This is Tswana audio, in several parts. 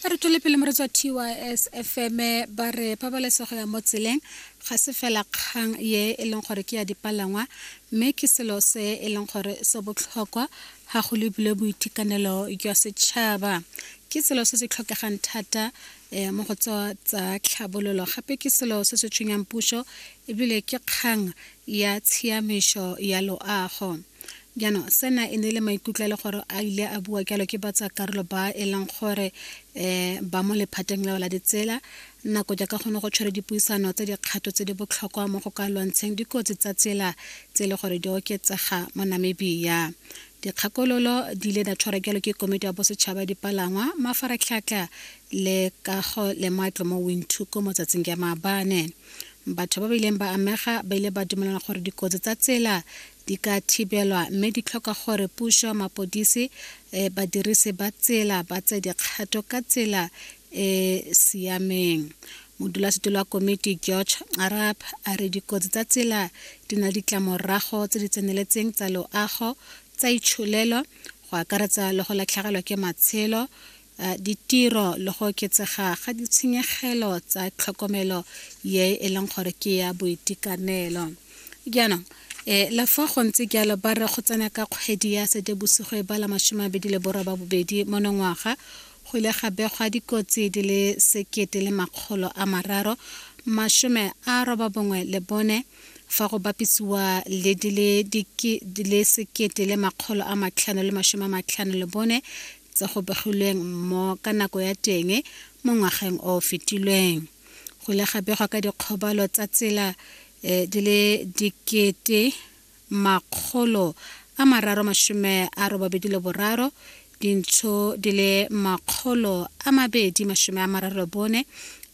a re tswele pele mo re tswa tys fm ba re pabalesego ya mo tseleng ga se fela kgang ye e leng gore ke ya dipalangwa mme ke selo se e leng gore se botlhokwa ga go lebile boitekanelo jwa setšhaba ke selo se se tlhokegang thata um mo go tswa tsa tlhabololo gape ke selo se se tshwenyang puso ebile ke kgang ya tshiamišo ya loago jaanong sena e ne le maikutlo le gore a ile a bua jalo ke batsa karolo ba e leng gore um ba mo lephateng leo la ditsela nako jaaka gone go tshwere dipuisano tse dikgato tse di botlhokwa mo go ka lwantsheng dikotsi tsa tsela tse e le gore di oketsega mo namibia dikgakololo di ile da tshwara jalo ke komiti ya bosetšhaba ya dipalangwa mafaratlhatlha le kago le matlo mo winthuko mo tsatsing ya maabane batho ba ba ileng ba amega ba ile ba dumelana gore dikotsi tsa tsela di ka thibelwa mme di tlhoka gore puso mapodisi eh, badirisi ba tsela ba tse dikgato ka tsela e siameng modulasetilo wa komiti george arab a re dikotsi tsa tsela di na ditlamorago tse di tseneletseng tsa loago tsa itsholelo go akaretsa le go latlhegelwa ke matshelo ditiro le go oketsega ga ditshenyegelo tsa tlhokomelo ye e leng gore ke ya boitekanelo jaanong e le fa go ntse jalo ba re go tsena ka kgwedi ya setebosigo e bala masome a bedi le boroba bobedi monongwaga go ile ga begwa dikotsi di le sekete le makgolo a mararo masome a roba bongwe le bone fa go bapisiwa le di le sekete le makgolo a matlhano le masome a matlhano le bone tse go begilweng mo ka nako ya teng mo ngwageng o fetilweng go ile ga begwa ka dikgobalo tsa tsela eh, di le dikete makgolo a mararo mashome a robabedi le boraro dintsho di le makgolo a mabedi mashome a mararo le bone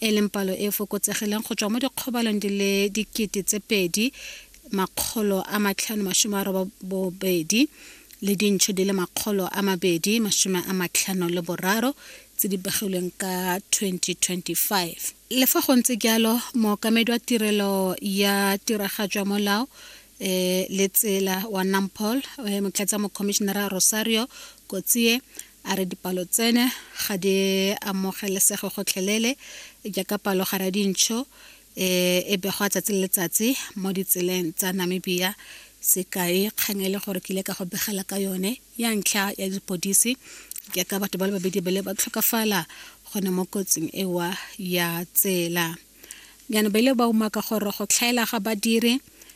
e leng palo e fokotsegileng go tswa mo dikgobalong di le dikete tse pedi makgolo a matlhano mashome a robabobedi le dintšho di le makgolo a mabedi masome a matlhano le boraro tse di begilweng ka 2025 le fa go ntse jalo mookamedi wa tirelo ya tiragatso ya molao eh, le tsela wa nampol eh, motlatsa mokhomišenara rosario kotsie a re dipalo tsene ga di amogelesege gotlhelele jaaka palo gare ya dintšho e e begwa tsatsi le letsatsi mo ditseleng tsa namibia sekai kgang e le gore ke ile ka go begela ka yone ya ntlha ya dipodisi ke ka batho ba le babedi ba le ba tlhokafala gone mo kotsing ewa ya tsela jaanong ba ile ba umaka gore go tlhaela ga badiri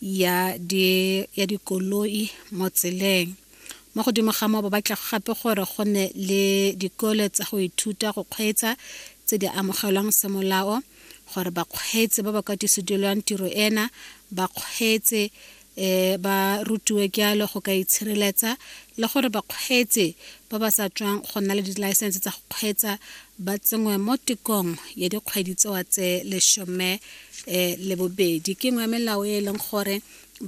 ya di ya dikoloi mo tseleng mo godimo ga moo ba batla gape gore go ne le dikole tsa go ithuta go kgweetsa tse di amogelwang semolao gore bakgweetsi ba ba katisedilwang tiro ena ba kgweetse um ba rutiwe jalo go ka itshireletsa le gore bakgweetsi ba ba sa tswang go nna le dilaesense tsa go kgweetsa ba tsenngwe mo tikong ya dikgwedi tsewa tse lesome um le bobedi ke nngwe ya melao e e leng gore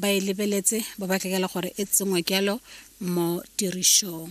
ba e lebeletse ba batlegela gore e tsenngwe jalo mo tirišong